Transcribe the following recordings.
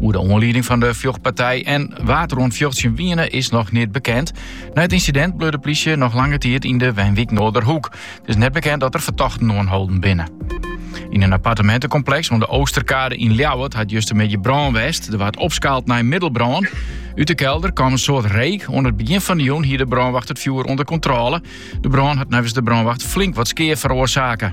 Oer de oanlieding fan de fjochtpartij en wa't der oan it fjochtsjen wiene is noch neat bekend. Nei it ynsidint bleau de plysje noch lange tiid yn de wenwyk Noorderhoek. It is net bekend dat der fertochten oanholden binne. Yn in appartementekompleks oan de Oosterkade yn Ljouwert hat justermiddei brân west. Der waard opskaald nei middelbrân. Ut de kelder kwam in soad reek. Oan it begjin fan de jûn hie de brânwacht it fjoer ûnder kontrôle. De brân hat neffens de brânwacht flink wat skea feroarsake.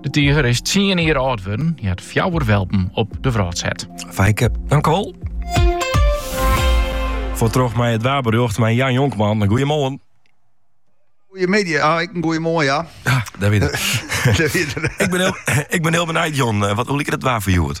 De tiger is tsien jier âld wurden, hja hat fjouwer welpen op de wrâld set. Fijke, tankewol. Fuort troch mei it waarberjocht mei Jan Jonkman. Goeiemoarn. Goeiemiddei, ah, ek in goeie moarn, ja. Ja, dat wit ik. Ik bin hiel, ik bin hiel benijd, Jan. Eh, wat, hoe liket it waar foar hjoed?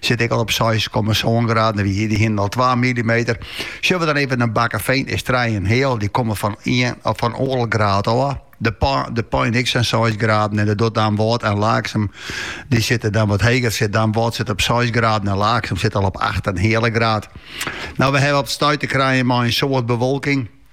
Sit ek al op seis komma sân graden, dêr, dy hienen al twa millimeter. Sjogge we dan even nei Bakkefean, is trije en heal. Dy komme fan ien of fan oardel graad ôf. De, pa, De Pein ek sa'n 6 graden en dan Damwâld en Laaksum, dy sitte dan wat heger. Sit Damwâld sit op 6 graden en Laaksum sit al op 8 en heale graad. No, we hawwe op it stuit te krijen mei in soad bewolking.